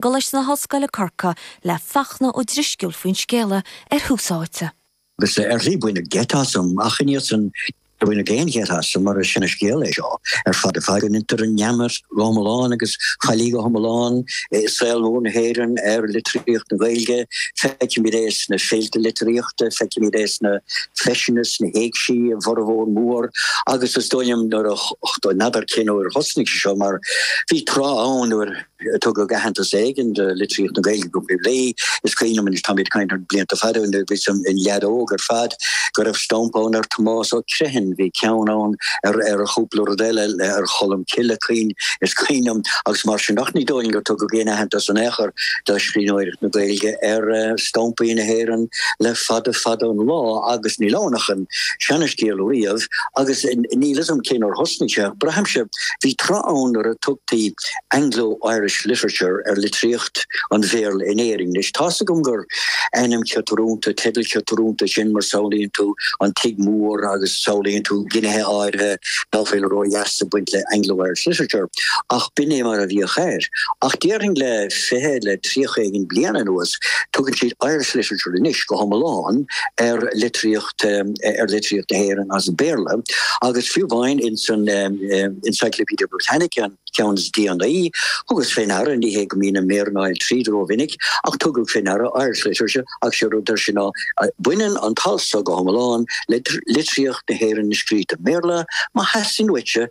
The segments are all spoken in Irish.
gColáiste na hOllscoile, Corcaigh, le Fachtna Ó Drisceoil faoin scéala ar Thús Áite. Agus ar shlí baineadh geit asam, ach ina dhiaidh san níor baineadh aon gheit asam, mar is sine scéal é seo ar fad ar fad, go ndeintear an neamart go hiomlán agus faillí go hiomlán i saol mór na hÉireann ar litríocht na Gaeilge. Feicimid é sna féilte litríochta, feicimid é sna feiseanna, sna héigsí, a bhformhór mór, agus is dóigh liom nuair a, n'fheadar cén uair a thosnaigh sé seo mar bhí tráth ann nuair. Tugadh aitheantas éigin do litríocht na Gaeilge go poiblí. Is cuimhin liom, anois táimid ag caint thar blianta fada, nuair a bhíos-sa i mo leaid óg ar fad, go raibh stampa ann ar Thomás Ó Criomhthain, bhí ceann ann ar ar chúpla rud eile ar Cholm Cille, cuimhin, is cuimhin liom, agus mar sin, ach ní dóigh liom gur tugadh aon aitheantas in aon chor do scríbhneoireacht na Gaeilge ar stampaí na hÉireann le fada fada an lá, agus níl ann ach an seanscéal riamh, agus níl 'fhios a'm cén uair thosnaigh sé, ach braithimse bhí tráth ann nuair a tugtaí Anglo-Irish literature, ar litríocht an Bhéarla in Éirinn. Anois, tá's agam gur ainm ciotrúnta, teideal ciotrúnta é sin, mar samhlaíonn tú an tigh mór agus samhlaíonn tú gnéithe áirithe ná fuil ró-dheas ag baint le Anglo-Irish literature, ach b'in é mar a bhíodh air. Ach déarfainn le fiche, le tríocha éigin bliain anuas, tugann siad Irish literature anois, go hiomlán, ar litríocht, ar litríocht na hÉireann as Béarla, agus fiú amháin insan Encyclopedia Britannica, an. ceann is déanaí. Thugas fé ndeara, ní hé go mbíonn na méara ag gabháil tríd rómhinic, ach thugas fé ndeara, Irish literature, agus sé rud a dúirt sé ná, baineann an t-alt so go hiomlán le litríocht na hÉireann a scríobhadh i mBéarla. Má theastaíonn uaitse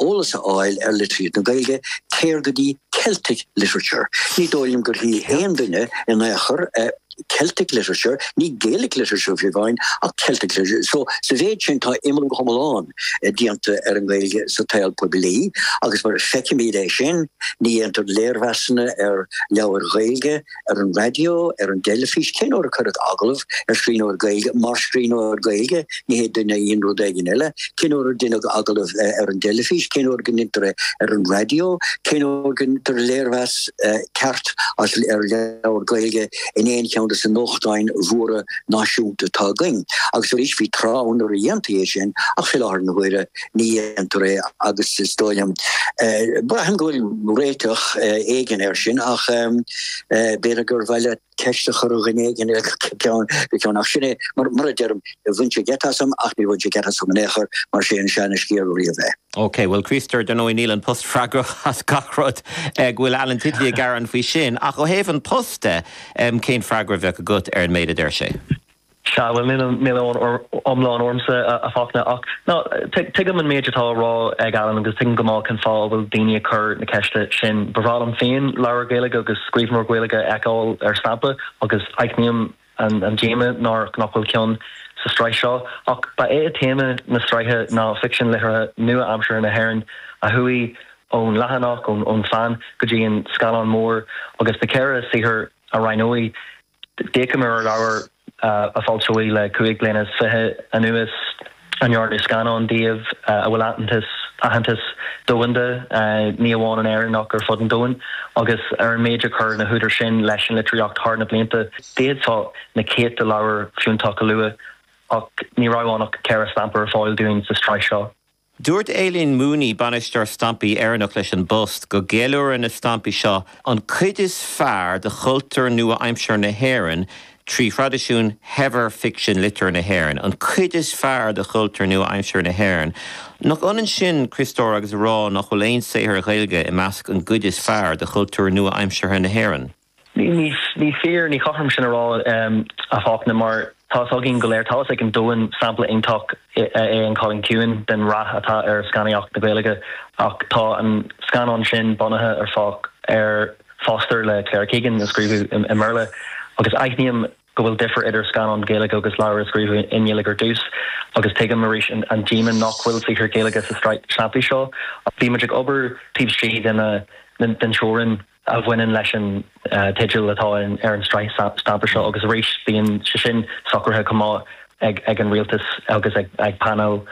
eolas a fháil ar litríocht na Gaeilge, téir go dtí Celtic literature. Ní dóigh liom gur scríobh aon duine in aon chor a. Celtic literature, ní Gaelic literature fiú amháin ach Celtic literature. So sa mhéid sin tá imeallú iomlán déanta ar an nGaeilge sa tsaol poiblí agus mar feicimid é sin, ní déantar léirmheasanna ar leabhair Ghaeilge ar an raidió, ar an dteilifís, cén uair a cuireadh agallamh ar scríbhneoir Gaeilge mar scríbhneoir Gaeilge? Ní hé duine a dhein rud éigin eile, cén uair a deineadh agallamh ar an dteilifís, cén uair go ndeintear é ar an raidió, cén uair go ndeintear léirmheas ceart ar leabhar Gaeilge in aon cheann de na nuachtáin mhóra náisiúnta atá againn. Agus arís, bhí tráth ann nuair a dhéantaí é sin ach i láthair na huaire ní dhéantar é agus is dóigh liom, braithim go bhfuil réiteach éigin air sin ach b'fhéidir gur mhaith le. ceist a chur ar dhuine éigin ar ball faoina cheann ach sin é mar a deirim, bhain sé geit asam ach níor bhain sé geit asam in aon chor mar is é an seanascéal riamh é. Ok, bhuel a Chríostóir, ar ndóigh níl An Post freagrach as gach rud, go bhfuil Alan Titley ag gearán faoi sin, ach ó thaobh An Post de, cén freagra a bheadh agat ar an méid a deir sé? Sea, bhuel, níl fios iomlán ormsa, a Fachtna, ach ná tuigim an méid atá á rá ag Alan agus tuigim go maith cén fáth a bhfuil daoine ag cur na ceiste sin. Ba bhreá liom féin leabhar Gaeilge agus scríbhneoir Ghaeilge a fheiceáil ar stampa agus aithním an díoma nach bhfuil ceann sa sraith seo. Ach ba é téama na sraithe ná ficsean liteartha nua-aimseartha na hÉireann a chuaigh ón leathanach, ón bpeann, go dtí an scáileán mór agus na ceithre shaothar a roghnaíodh. D'fhéachamar ar leabhair a foilsíodh le cúig bliana is fiche anuas, a ndearnadh scannáin díobh, a bhfuil aitheantas, aitheantas domhanda, ní amháin in Éirinn ach ar fud an domhain, agus ar an méid ar chuir na húdair sin leis an litríocht thar na blianta. D'fhéadfá na céadta leabhar fiúntach a lua ach ní raibh ann ach ceithre stampa ar fáil dúinn sa tsraith seo. Dúirt Aileen Mooney, Bainisteoir Stampaí Éireannach leis an bPost, go gceiliúrann na stampaí seo an cuid is fearr de chultúr nua-aimseartha na hÉireann trí thraidisiún shaibhir ficsean liteartha na hÉireann, an cuid is fearr de chultúr nua-aimseartha na hÉireann. Nach ionann sin, a Chriostóir, agus a rá nach bhfuil aon saothar Gaeilge i measc an cuid is fearr de chultúr nua-aimseartha na hÉireann? Ní fíor, ní cothrom sin a rá, a Fachtna, mar tá fhios againn go léir, tá fhios ag an domhan, sampla iontach é an Cailín Ciúin den rath atá ar scannaíocht na Gaeilge ach tá an scannán sin bunaithe ar, ar Foster le Claire Keegan a scríobhadh i mBéarla agus aithním go bhfuil difir idir scannán Gaeilge agus leabhar a scríobhadh i nGaeilge ar dtús agus tuigim arís an díoma nach bhfuil saothar Gaeilge sa sraith stampaí seo ach bhí muid ag obair taobh istigh den teorainn. a bhaineann leis an teideal atá ar an tsraith stampa seo agus arís bíonn sé sin socraithe chomh maith ag an Rialtas agus ag painéal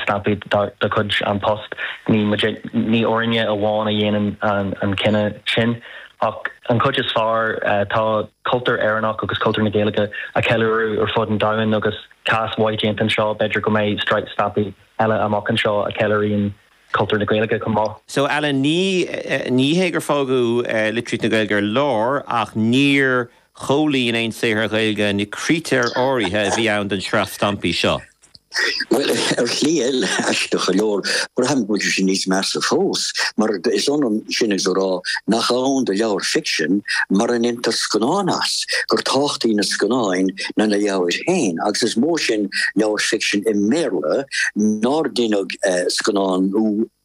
stampaí de chuid An Post. Ní muid, ní orainne amháin a dhéanann an cinneadh sin ach an chuid is fearr. Tá cultúr Éireannach agus cultúr na Gaeilge á cheiliúradh ar fud an domhain agus cás mhaith déanta anseo. B'fhéidir go mbeidh sraith stampaí eile amach anseo a cheiliúríonn cultúr na Gaeilge chomh maith. So Alan, ní, ní hé gur fágadh litríocht na Gaeilge ar lár ach níor chomhlíon aon saothar Ghaeilge na critéir áirithe a bhí ann don sraith stampaí seo. Bhuel, ar shlí eile, aisteach go leor, braithim go bhfuil sé níos measa fós, mar is ionann sin agus a rá nach ann do leabhar ficsin mura ndéantar scannán as, gur tábhachtaí na scannáin ná na leabhair féin, agus is mó sin leabhar ficsin i mBéarla nár deineadh. scannán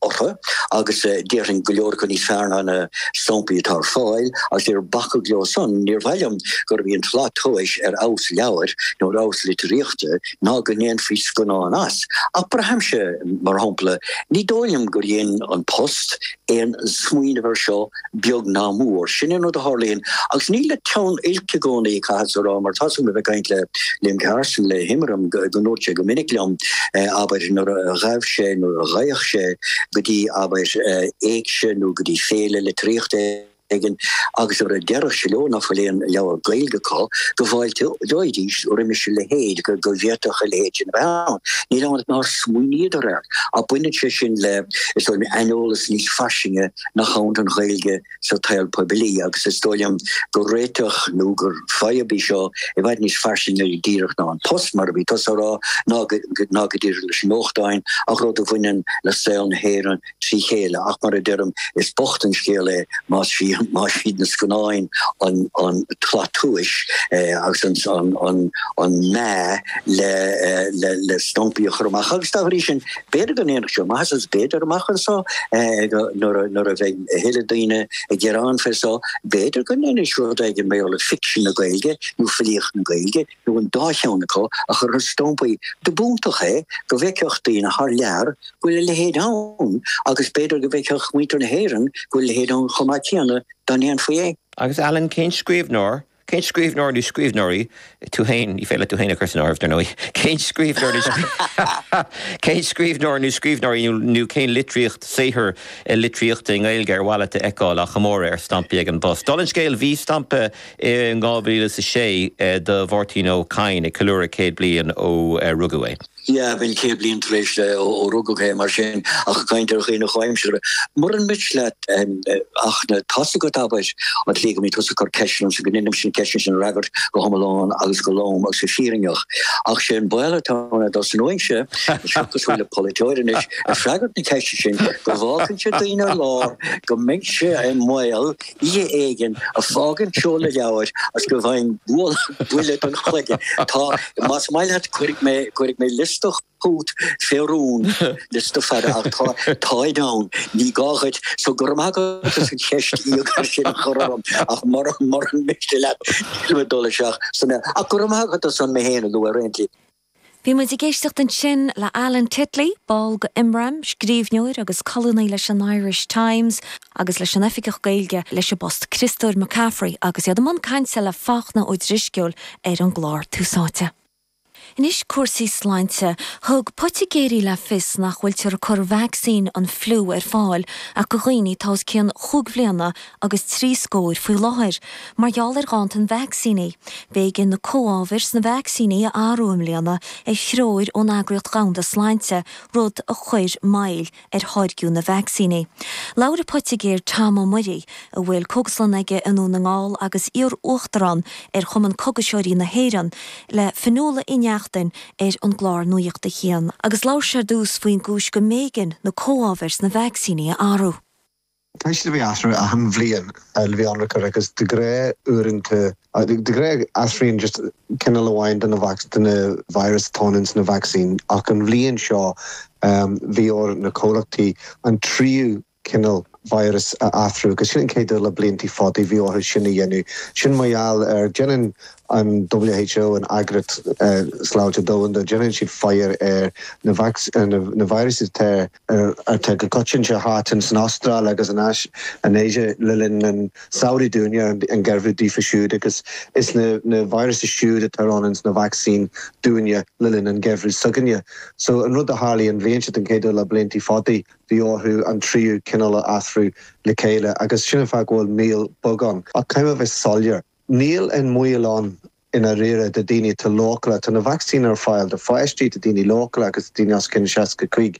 orthu agus déarfainn go leor acu níos fearr ná na samplaí atá ar fáil agus níor bacadh leo san. Níor mhaith liom gurb í an tslat tomhais ar fheabhas leabhair nó ar fheabhas litríochta ná go ndéanfaí scannán as. Ach braithimse, mar shampla, ní dóigh liom gur dhein An Post aon smaoineamh air seo, beag ná mór. Sin an rud a tharlaíonn. Agus ní le teann oilc i gcónaí é, caithfeadsa a rá, mar tá's agam ó bheith ag caint le Liam Carson, le hImram, go ndúirt sé go minic liom, abair, nuair a ghabh sé, nuair a ghabhadh sé, go dtí, abair, éigse nó go dtí féile litríochta, éigin agus nuair a déarfadh sé leo ná fuil aon leabhar Gaeilge acu, go bhfáilteoidís roimis a leithéid, go bhféadfadh a leithéid sin a bheith ann. Níl ann ach nár smaoiníodar air. Ach baineann sé sin le, is dóigh liom, aineolas níos fairsinge nach ann don Ghaeilge sa tsaol poiblí agus is dóigh liom gur réiteach nó gur fadhb í seo i bhfad níos fairsinge díreach ná an Post, mar a bhí tusa a rá, ná go díreach leis na nuachtáin ach rud a bhaineann le saol na hÉireann trí chéile. Ach mar a deirim, is bocht an scéal é más iad na scannáin an tslat tomhais agus an meá le stampaí a chur amach. Agus dá bhrí sin, b'fhéidir go ndéanfadh sé maitheas, agus b'fhéidir, amach anseo, nuair a bheidh a thuilleadh daoine ag gearán fé seo, b'fhéidir go ndéanfaidís rud éigin ar mhaithe le ficsean na Gaeilge nó filíocht na Gaeilge. nó an dá cheann acu, a chur ar stampaí, do b'iontach é go bhfeicfeadh daoine thar lear go bhfuil a leithéid ann, agus b'fhéidir go bhfeicfeadh muintir na hÉireann go bhfuil a leithéid ann chomh maith céanna, dá ndéanfaí é. Agus Alan, cén scríbhneoir, cén scríbhneoir nó scríbhneoirí, tú féin, ní féidir leat tú féin a chur san áireamh, dar ndóigh, cén scríbhneoir nó cén scríbhneoir nó scríbhneoirí nó cén litríocht, saothar litríochta i nGaeilge ar mhaith leat a fheiceáil á chomóradh ar stampaí ag an bPost? Dála an scéil, bhí stampa. In 2006, do Mháirtín Ó Cadhain ag ceiliúradh céad bliain ó rugadh é. Yeah, b'in céad bliain tar éis ó rugadh é, mar sin, ach caint ar dhaoine comhaimseartha. Muran miste leat, a Fhachtna, tá's agat abair, an tslí go mbíonn tusa ag cur ceisteanna ormsa go ndeinimse na ceisteanna sin a fhreagairt go hiomlán agus go lom agus go fírinneach. Ach sé an baol atá ann domsa anois, táimse cosúil le polaiteoir anois, ag freagairt na ceiste sin, go bhfágfainnse daoine ar lár go mbeinnse i mbaol, Oíche éigin ag fágaint seoladh leabhair is go bhfaighinn buille don chloigeann. Tá, más maith leat, cuirfidh mé liosta chugat fé rún, liosta fada, ach tá, táid ann, ní gá dhuit. So, go raibh maith agat as an cheist íogair sin a chur orm, ach mura miste leat, nílim ag dul isteach ansan, ach go raibh maith agat as an mé féin a lua ar aon chaoi. Bhí muid ag éisteacht ansin le Alan Titley, ball go Imram, scríbhneoir agus colúnaí leis an Irish Times, agus leis an Oifigeach Gaeilge leis an bPost, Críostóir McCaffrey, agus iad i mbun cainte le Fachtna Ó Drisceoil ar an gclár Tús Áite. Anois cúrsaí sláinte. Thug poitigéirí le fios nach bhfuiltear ag cur vacsaín an fliú ar fáil ach go dhaoine atá os cionn chúig bhliana agus trí scóir faoi láthair, mar gheall ar ghanntan vacsaíní. B'éigean na comhábhair sna vacsaíní a athrú i mbliana ar threoir ón Eagraíocht Dhomhanda Sláinte, rud a chuir moill ar tháirgiú na vacsaíní. Labhair an poitigéir Tom Ó Muirí, a bhfuil cógaslann aige i nDún na nGall agus iar-uachtarán ar Chumann Cógaiseoirí na hÉireann, le Fionnuala Uí Neachtain ar an gclár Nuacht a hAon, agus labhair sé ar dtús faoin gcúis go mb'éigean na comhábhair sna vacsaíní a athrú. Tá siad le bheith athrú achan bhliain le bheith ionraic agus de ghnáth uaireanta, de ghnáth athraíonn just cineál amháin de na de na virus atá ann ins na vacsaín ach an bhliain seo bhí ar na comhlachtaí an tríú cineál virus a athrú agus sin an chéad uair le bliantaí fadaí bhí orthu sin a dhéanamh. Sin mar gheall ar déanann an WHO, an Eagraíocht Sláinte Domhanda, déanann siad faire ar na vacsaín, na viruses atá ar. ar atá go coitianta thart san Astráil agus in Áis in Asia le linn an tsamhraidh dúinne, an geimhreadh daofa siúd agus is na virus siúd atá ann ins na vacsaín dúinne le linn an geimhreadh s'againne. So an rud a tharlaigh an bhliain seo den chéad uair le bliantaí fadaí bhí orthu an tríú cineál a athrú le chéile agus sin an fáth go bhfuil moill bheag ann. Ach caithfidh mé bheith soiléir, níl aon mhoill ann i ndáiríre, do dhaoine atá leochaileach. Tá na vacsaíní ar fáil do pháistí, do dhaoine leochaileacha agus do dhaoine os cionn 65.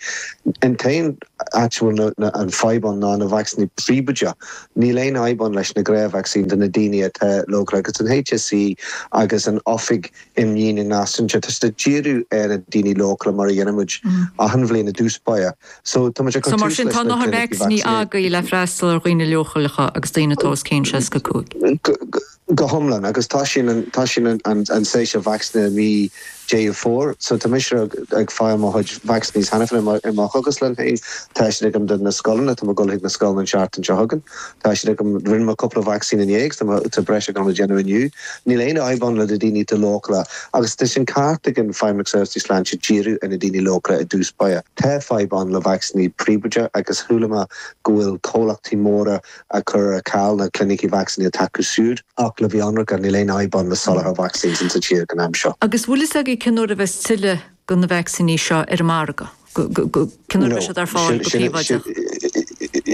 An t-aon áit a bhfuil an fadhb ann ná na vacsaíní príobháideacha. Níl aon fhadhb ann leis na gnáthvacsaíní do na daoine atá leochaileach agus an HSE agus an Oifig Imdhíonadh Náisiúnta, tá siad ag díriú ar na daoine leochaileacha mar a dhéanann muid achan bhliain i dtús báire. So, tá muid ag, tá vacsaíní agaibh le freastal ar dhaoine leochaileacha agus daoine atá os cionn 65. Go hiomlán, agus tá sin an, tá sin an, an, an séasúr vacsaíní i mí Dheireadh Fómhair, so tá mise ag, ag fáil mo chuid vacsaíní cheana féin i mo, i mo chógaslann féin, tá siad agam do na scoileanna, tá mé ag dul chuig na scoileanna an seachtain seo chugainn, tá siad agam, rinne mé cúpla vacsaín inné agus tá mé, tá breis agam le déanamh inniu. Níl aon fhadhb ann le na daoine atá leochaileach agus tá sin ceart ag an Feidhmeannacht Seirbhísí Sláinte díriú ar na daoine leochaileacha i dtús báire, tá fadhb ann le vacsaíní príobháideacha agus chuala mé go bhfuil comhlachtaí móra, ag cur ar ceal na clinicí vacsaíní atá acu siúd, ach le bheith ionraic níl aon fhadhb ann le soláthar vacsaín insa tír den am seo. Agus bhfuil fhios agat cén uair a bheas tuilleadh de na vacsaíní seo ar an margadh? Cén uair a bheidh siad ar fáil go príobháideach?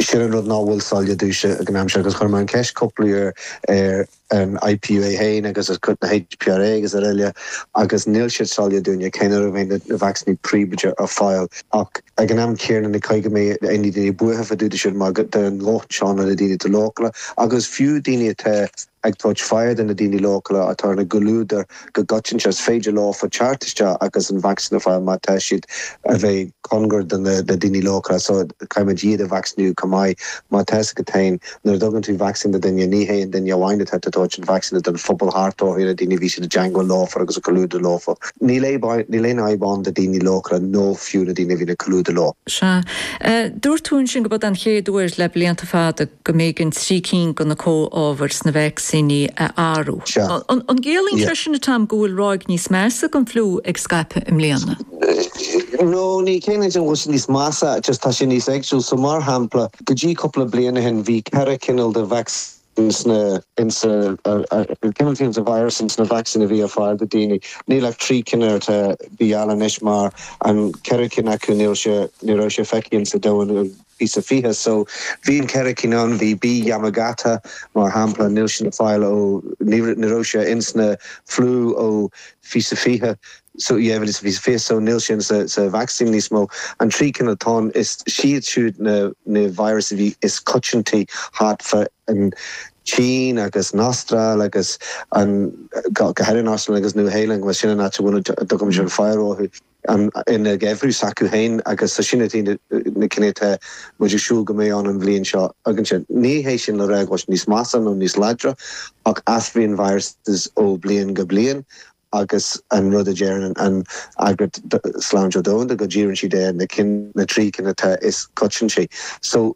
Sin an rud nach bhfuil soiléir domhsa den am seo agus chuir mé an ceist cúpla uair ar an IPU é féin agus as cuid na HPRA agus araile, agus níl siad soiléir dúinne cén uair a bheidh na vacsaíní príobháideacha ar fáil. Ach ag an am céanna ní gá go mbeadh aon daoine buartha fá dtaobh de sin, mar go dtugann lucht seánra na daoine atá leochaileach, agus fiú daoine atá ag tabhairt aire do na daoine leochaileacha atá clúdaithe, go coitianta, is féidir leofa teacht isteach agus an vacsaín a fháil má tá siad a bheith cóngar do na daoine leochaileacha so caithfimid iad a vacsaíniú chomh maith mar tá 's agat féin. Nuair a dtugann tú vacsaín do duine, ní hé an duine amháin atá tú ag tabhairt an vacsaín ach don phobal thart orthu, na daoine a bhíonn siad i dteangmháil leofa agus ag comhluadar leofa. Níl aib, níl aon fhadhb ann do daoine leochaileacha nó fiú na daoine a bhíonn ag comhluadar leo. Sea. Dúirt tú ansin go b'eod an chéad uair le blianta fada. go mb'éigean trí cinn de na comhábhair sna vacsaíní a athrú. An gciallaíonn sé sin, a Tom, go bhfuil ráig níos measa den fliú ag scaipeadh i mbliana? No, ní chiallaíonn sé go bhfuil sé níos measa, just tá sé níos éagsúil. So, mar shampla, go dtí cúpla bliain ó shin, bhí ceithre chineál de vacsaín sna, in sa, cineál taobh de virus in sna vacsaín a bhí ar fáil do daoine. Níl ach trí cinn atá, bí ann anois mar an ceithre cinn acu níl sé, ní raibh sé feicthe in sa domhan. 2020 so bhí an ceithre cinn ann, bhí B Yamagata mar shampla, níl sin ar fáil ó, ní raibh sé ins na fliú ó 2020 so, yeah bhí sé 2020 so níl sin sa vacsaín níos mó. An trí cinn atá ann, is siad siúd na na virus a bhí is coitiantaí thart fá an tSín agus an Astráil agus an go háirithe an Astráil agus Nua Shéalainn, bhuel sin an áit a bhfuil an documentation ar fáil orthu. ann ina ngeimhreadh s'acu féin agus so sin iad na cinn atá muid ag súil go mbeidh ann an bhliain seo againn sin. Ní hé sin le rá go níos measa nó níos láidre ach athraíonn viruses ó bhliain go bliain agus an rud a deireann an Eagraíocht Sláinte Dhomhanda go ndíríonn siad ar na trí cinn atá is coitianta. So.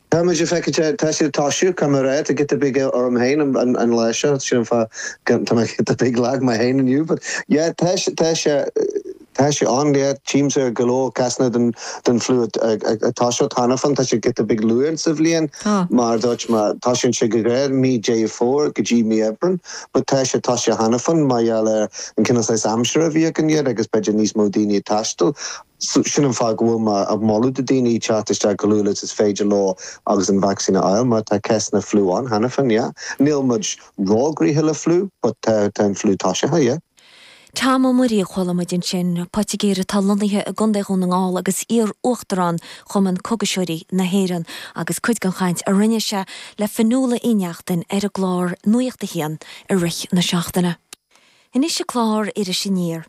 Tá mise ag feiceáil, tá sé ag toiseacht, caithfidh mé a rá tá giota beag orm féin an lá seo, sin an fáth go, tá mé giota beag lag mé féin inniu but yeah tá sé, tá sé, tá sé ann yeah, tchímse go leor cásanna den, den fliú ag, ag, ag toiseacht cheana féin, tá sé giota beag luath sa bhliain Tá. mar a dúirt mé, toisíonn sé go géar mí Dheireadh Fómhair go dtí mí Aibreán but tá sé toiseacht cheana féin mar gheall ar an cineál saghas aimsire a bhí againn agus b'fhéidir níos mó daoine ag taisteal Sin an fáth go bhfuil mé ag moladh do dhaoine teacht isteach chomh luath is is féidir leo agus an vacsaín a fháil mar tá cásanna fliú ann cheana féin, yeah. Níl muid róghnoitheach le fliú but tá an fliú toisithe, yeah. Tom Ó Muirí a chuala muid ansin, poitigéir atá lonnaithe i gContae Dhún na nGall agus iar-uachtarán Chumann Cógaiseoirí na hÉireann agus cuid den chaint a rinne sé le Fionnuala Uí Neachtain ar an gclár Nuacht a hAon i rith na seachtaine. Anois i gclár Iris Aniar,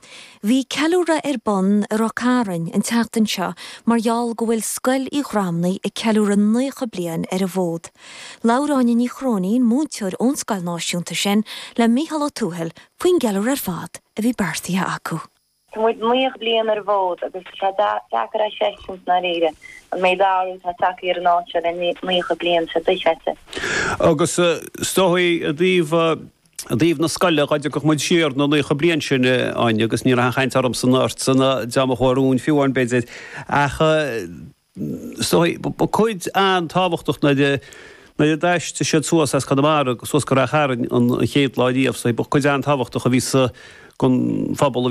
bhí ceiliúradh ar bun i Ráth Cairn an tseachtain seo mar gheall go bhfuil Scoil Uí Ghramhnaigh ag ceiliúradh 90 bliain ar an bhfód. Labhair Áine Ní Chróinín, múinteoir ón scoil náisiúnta sin, le Micheál Ó Tuathail faoin gceiliúradh ar fad a bhí beartaithe acu. Tá muid naocha bliain ar an bhfód agus tá sé deacair a chreistiúint i ndáiríre an méid athrú atá tagtha ar an áit seo le naocha bliain seo dochreidte. Agus is dóigh i dtaobh na scoile, dhá dtiocfadh muid siar na naocha bliain sin, Áine, agus ní raibh aon chaint ormsa ná ortsa ná an dream a chuaigh romhainn fiú amháin b'fhéidir, ach is dóigh, ba cuid an-tábhachtach nuair a, nuair a d'aistrigh siad suas as Conamara suas go Ráth Chairn an chéad lá riamh, is dóigh, ba chuid an-tábhachtach a bhí sa, den phobal í